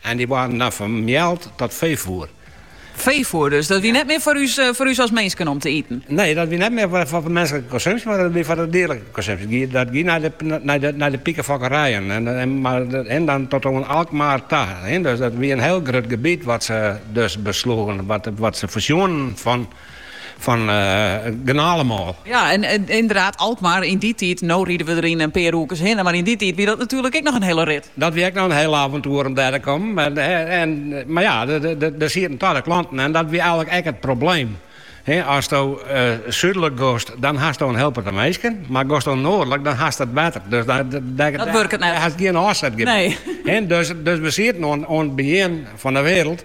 En dy waarden dan fermeald ta feefoer. Feefoer dus, dat wie net mear foar ús as minsken om te iten? Nee, dat wie net mear foar minsklike konsumpsje, mar dat wie foar de dierlike konsumpsje. Dat gie nei de pikefokkerijen mar en dan tot oan Alkmaar ta. Dus dat wie in hiel grut gebiet wat se dus besloegen, wat se foarseagen fan. Fan gernalemoal. Ja, en inderdaad, Alkmaar yn dy tiid, no ride we der yn in pear oerkes hinne, mar yn dy tiid wie dat natuerlik ek noch in hiele rit. Dat wie ek noch in hiel aventoer om dêr te kommen. En mar ja, dêr sieten ta de klanten en dat wie eigenlik ek it probleem. Asto súdlik gost, dan hasto in hiel protte minsken, mar gosto noardlik, dan hast it wetter. Dus dêr hast gjin ôfsetgebiet. Dus we sieten oan it begjin fan 'e wêreld.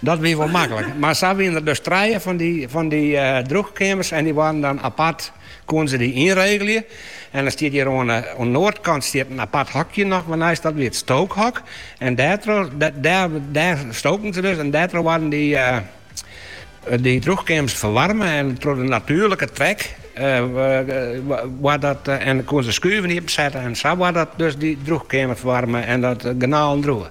Dat wie wol maklik, mar sa wiene it dus trije fan dy, fan dy drûchkeamers en dy waarden dan apart, koenen se dy ynregelje. En dan stiet hjir oan, oan 'e noardkant stiet in apart hokje noch wat neist, dat wie it stookhok en dêrtroch, dêr stoken se dus en dêrtroch waarden dy, dy drûchkeamers ferwaarme en troch de natuerlike trek koenen se skuven iepen setten en sa waard dus dy drûchkeamer ferwaarme en de gernalen drûge.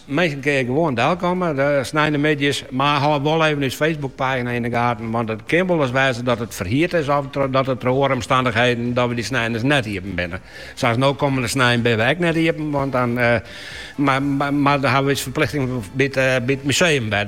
Minsken kinne gewoan delkomme de sneintemiddeis, mar hâld wol even ús Facebook-pagina yn de gaten, want it kin wolris wêze dat it ferhierd is of dat it troch oare omstannichheden dat we dy snein ris net iepen binne. Sa is no kommende snein binne we ek net iepen, want dan mar dan hawwe we ús ferplichtingen by't, by't museum wer.